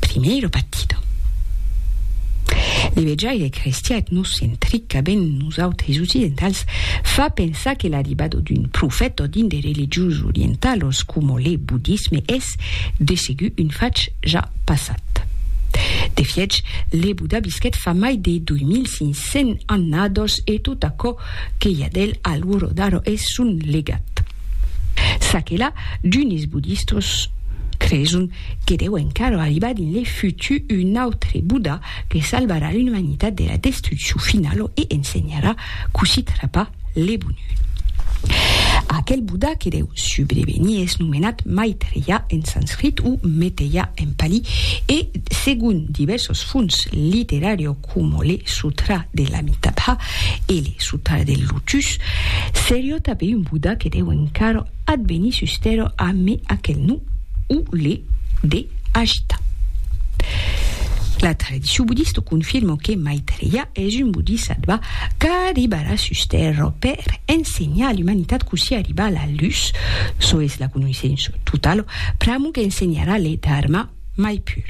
Primeiro battido. L'evejaire crestian etnocentrica ben nosautres occidentals fa pensar que l'arribado d'un profèt ò dinde religions orientalos coma le budisme es de segur un fach ja passat. De fiech, le Buda visquèt fa mai de 2500 annados e tot aquò que i a d'el al Woro Daro es son legat. Ça que la, d'unes budistos creson Que deu encara arribar dins le futur un autre Buddha que salvarà l'umanitat de la destruccion finala e ensenharà cossí trapar le bonheur. Aquel Buddha que deu subrevenir es nomenat Maitreya en sanscrit o Meteya en pali e, segon divèrsos fons literària coma le Sutra de l'Amitabha e le Sutra del Lotus, seriá tanben un Buddha que deu encara Ath veni sustèro a me aquel non, o le de Ajita. La tradicion budista o confirma que Maitreya es un bodhisattva qu'arribarà sustèro per ensenhar a l'umanitat cossí arribar a la luz, çò es la conoissença totala, pr'amo qu'ensenharà le Dharma mai pur.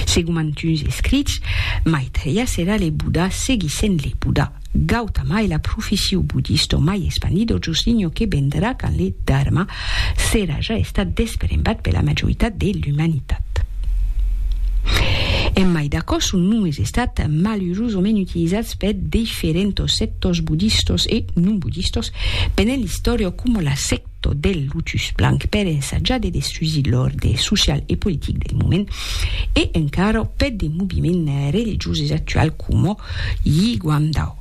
Segon mantuns escrits, Maitreya serà le Buddha seguissent le Buddha. Gautama e la profession buddista mai espandida jos linho que vendrà quand le Dharma serà ja estat desperembat per la majoritat de l'umanitat. En mai d'aquò, son nom es estat malurosament utilizats per diferentos sectors buddistas e non buddistas pendent l'istòria coma la secta tot del lotus blanc per ensajar de destrusir l'òrde social e politic del moment, e encara peth de moviments religioses actual coma Yi Guandao.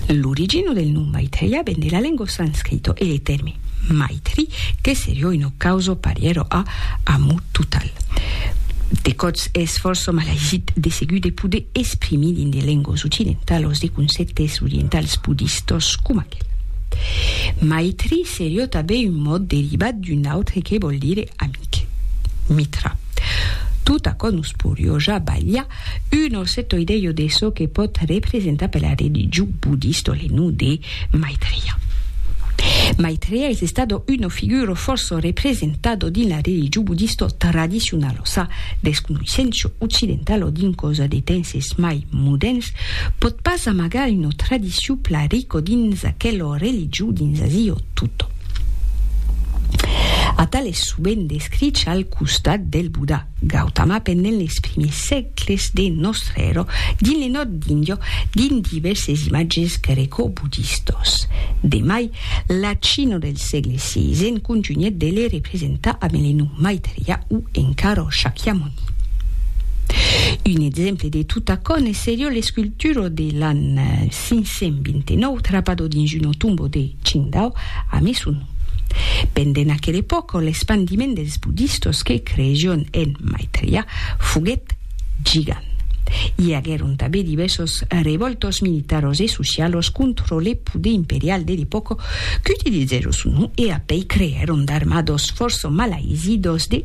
L'origina del nom Maitreya ven de la lengua sanscrita e le tèrme Maitri, que seriá una causa parièra a Amor total. De còps es fòrça malaïsit de segur de poder exprimir dins de lenguas occidentalas de concèptes orientals budistas coma. Michael. Maitri serió tanben un mot derivat d'un autre que vòl dire amic, Mitra. Tot aquò nos porió ja balhar un osset oidelho de çò que pòt representar per la religion buddista le nom de Maitreya. Maitreya es estado uno figuro fòrça representado dins la religion buddista tradicionala, sa desconoissença occidentala dins causa de temps es mai modèrns Pòt pas amagar una tradicion pla rico dins aquelo religiu dins Azio Tutto. Atal es sovent descrich al costat del Buda, Gautama pendent les primiers sègles de Nòstre Ero dins le nòrd d'Indio dins divèrses imatges greco-budistos. De mai, la China del sègle xvi en contunhèt de le representar a Melenu Maitreya o encara Shakyamuni. Un exemple de tot aquò ne seriá l'escultura de l'an 529 trapado dins una tomba de Qingdao a Mesun. Pendent aquela epòca, l'espandiment dels budistas que creissián en Maitreya foguèt gigant. I aguèron tanben divèrsas revòltas militaras e socialas contra le poder imperial de l'epòca qu'utilizèron son nom e a pei creèron d'armadas fòrça malaisidas de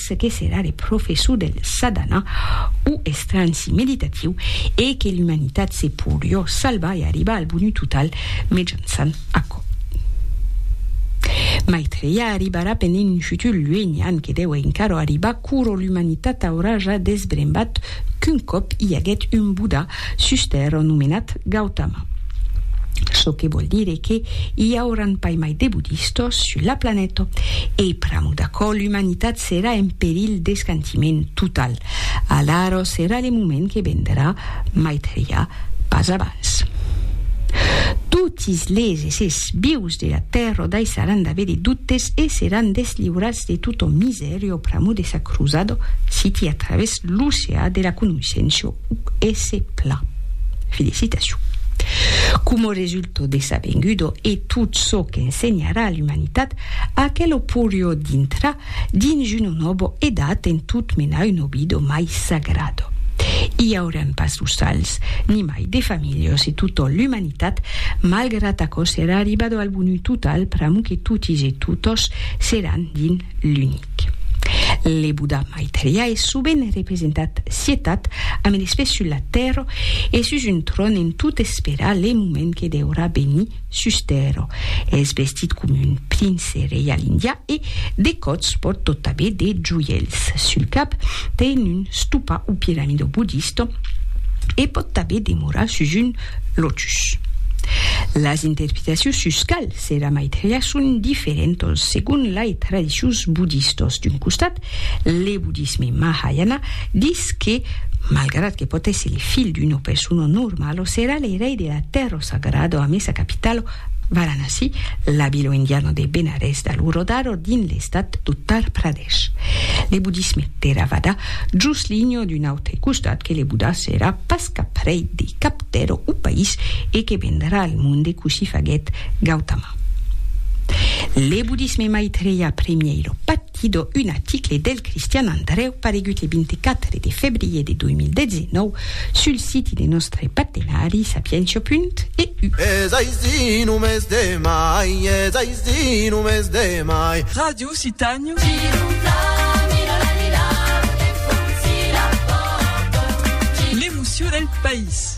ce que serà de professor del sadhana o estranci meditatiu e que l'umanitat se podrió salvar e arribar al bonheur total mejançant aquò. Maitreya arribarà pendent un futur luenhan que deu encara arribar quoro l'umanitat aurà ja desbrembat qu'un còp i aguèt un Buddha Suster ò nomenat Gautama. Çò que vòl dire que i auran pas mai de bodistas sus la planeta. E pr'amor d'aquò l'umanitat serà en perilh d'escantiment total. Alara serà le moment que vendrà, Maitreya, pas abans. Totis les essers vius de la Tèrra daissaràn d'aver de dubtes e seràn desliurats de tota misèria pr'amor de sa crosada, siti a travèrs l'oceà de la conoissença. esse pla. Felicitacion. Coma resulto de sabengudo e tot çò qu'ensenharà a l'umanitat, aquelo porió dintrar dins una nòbo edat en tot menar un obido mai sagrado. I auràn pas los sals, nimai de familhos e totò l'umanitat, malgrat aquò serà arribado al bonut total pr'amo que totis e totòs seràn dins l'unic. Le Buddha Maitreya es sovent representat sietat amb eles pès sus la tèrra e sus un tròn en tot esperar le moment que deurà venir sus tèrra. Es vestit coma un prince reial indià e, de còts, pòrt tot abet de joièls. Sul cap ten un stupa o piramida buddista e pòt tanben demorar sus un lotus. Las interpretacions sus cal Sera Maitreya son diferentas segon lai tradicions bodistas. D'un costat, le bodisme Mahayana dis que, malgrat que pòt èsser le filh d'una persona normala, serà le rei de la tèrra sagrada amé sa capitala Varanasi, la vila indiana de Benarès d'alura d'ara dins l'estat d'Uttar Pradesh. Le bodisme Theravada jos linha d'un autre costat que le Buddha serà pas cap rei de cap tèrra o país e que vendrà al monde cossí faguèt Gautama. Le bodisme Maitreya Premieiro Pattido, un article del Cristian Andrèu paregut le 24 de febrier de 2019 sul siti de nòstre partenari sapientia.eu. Es aicí, només demai, es aicí, només demai. Radio. Lusitàniu. L'emocion del país.